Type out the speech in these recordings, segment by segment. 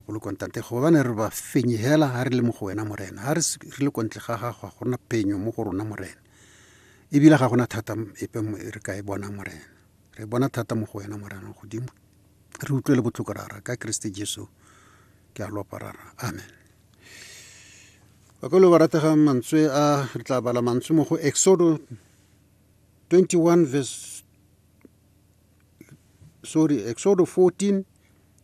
o le kontate go bane re ba fenye hela ga re le mo go wena morena ga re le kontle ga gago ga gona penyo mo go rona morena ebile ga gona thata epe e re ka e bona morena re bona thata mo go wena morena godimo re utlwe le botlhoko rara ka keresete jesu ke a lopa rara amen bakolo ba ratega mantswe a re tla bala mantswe mo go exodo 21 verse sorry exodo 14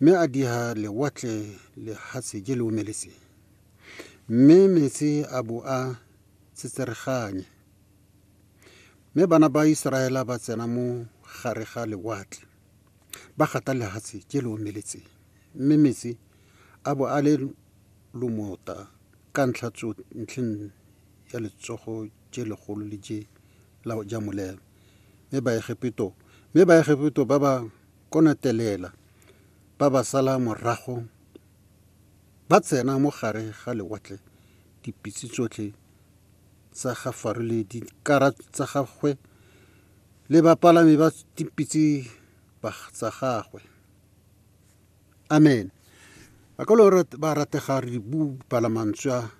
Mme a diha lewatle lehatshe je le omeletseng, mme metsi a bo a tsetsereganye. Mme bana ba Iseraela ba tsena mo gare ga lewatle, ba gata lehatshe je le omeletseng, mme metsi a bo a le lomota ka ntlha ntlheng ya letsogo je legolo le je la ja molelo. Mme Baegepeto mme Baegepeto ba ba konatelela ba ba sala morago ba tsena mo gare ga lewatle dipitse tsotlhe tsa ga Faro le dikara tsa gagwe le bapalami ba dipitse tsa gagwe. Amen. Ba ka lo ba ratega re dibu palamantswa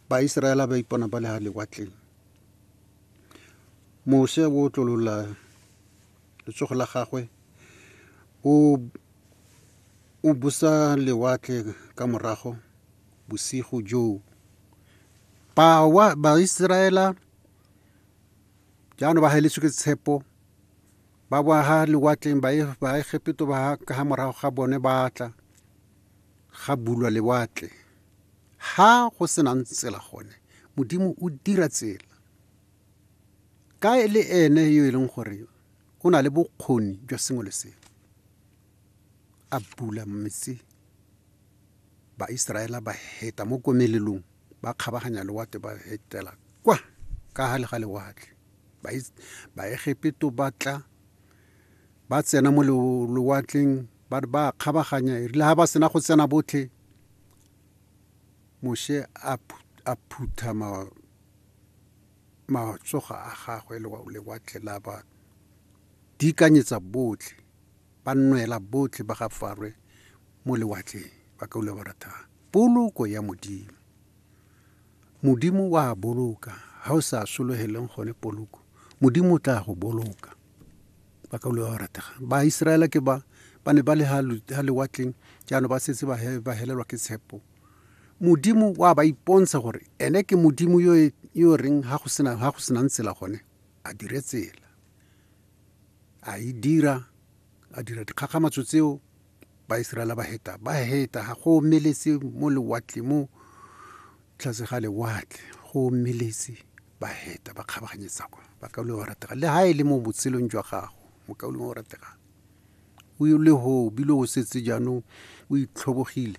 ba Iseraela ba ipona ba le ga lewatleng. Mose o tlolola Letsogo la gagwe o, o busa lewatle ka morago bosigo joo. Bawa, Baiseraela jaanong ba heletswe ke tshepo ba boa ha lewatleng baegepeto ba ka ga morago ga bone ba tla ga bulwa lewatle ha go senang tsela gone modimo o dira tsela Ka e le ene yo e leng gore o na le bokgoni jwa sengwe le sengwe a bula metsi baiseraela ba heta mo komelelong ba kgabaganya lewatle ba hetela kwa ka gale ga lewatle baegepeto ba tla ba tsena mo lewatleng ba ba kgabaganya erile ga ba sena go tsena botlhe Moshe a, a phutha ma, matsoga a gagwe lewatle la ba dikanyetsa botlhe, ba nnwela botlhe ba ga Farwe mo lewatleng, ba ka ula ba ratha poloko ya Modimo. Modimo wa boloka, ha o sa sologeleng gone poloko, Modimo o tla go boloka. Ba ka ula ba ratega. Ba Israela ke ba, ba ne ba le ha lewatleng, jaanong ba setse ba helelwa ke tshepo. modimo wa ba ipontsha gore ene ke modimo yo e, yo reng ha go sena ha go senang tsela gone a dire tsela a e dira a dira dikgakgamatso tseo ba Israela ba heta ba heta ga go meletse mo lewatle mo tlase ga lewatle go meletse ba heta ba kgabaganyetsa kwa ba kaule wa ratega le ha e le mo botshelong jwa gago mo kaule wa ratega o le ho bile o setse jaanong o itlhobogile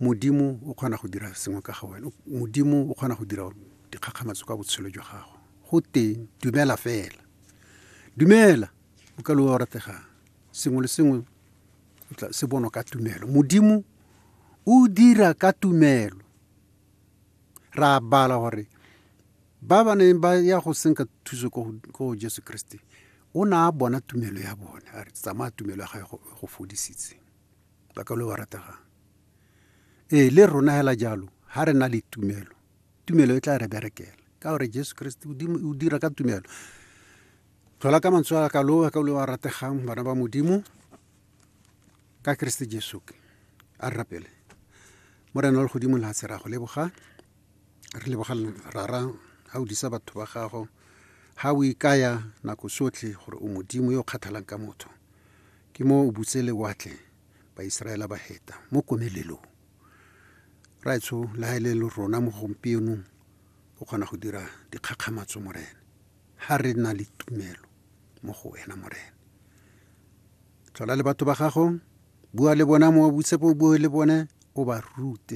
Modimo o kgona go dira sengwe ka ga wena. Modimo o kgona go dira dikgakgamatso ka botshelo jwa gago. Go teng, dumela fela. Dumela, o ka loa o rategang. Sengwe le sengwe se bonwa ka tumelo. Modimo o dira ka tumelo. Ra bala gore ba ba neng ba ya go senka thuso ko Jesu Kriste, o ne a bona tumelo ya bone, a re tsamaya tumelo ya gae go fodisitse. ba ka lo ba rategang ee le rona hela jalo ha re na le tumelo tumelo e tla re berekela ka gore jesu kriste o dira ka tumelo tlhola ka mantswe a ka lo ka lo ba rategang bana ba modimo ka kriste jesu a re rapele morena wa legodimo le hatshe ra go leboga re leboga rara ga o disa batho ba gago ga o ikaya nako sotlhe gore o modimo yo o kgathalang ka motho Ke mo o butse lewatle, Baiseraela ba heta mo komelelong. Raetsho, le ha e le rona mo gompienong, o kgona go dira dikgakgamatso, Morena, ha re na le tumelo mo go Wena, Morena. Tlhola le batho ba Gago, bua le bona mo o butse po o bue le bone, o ba rute.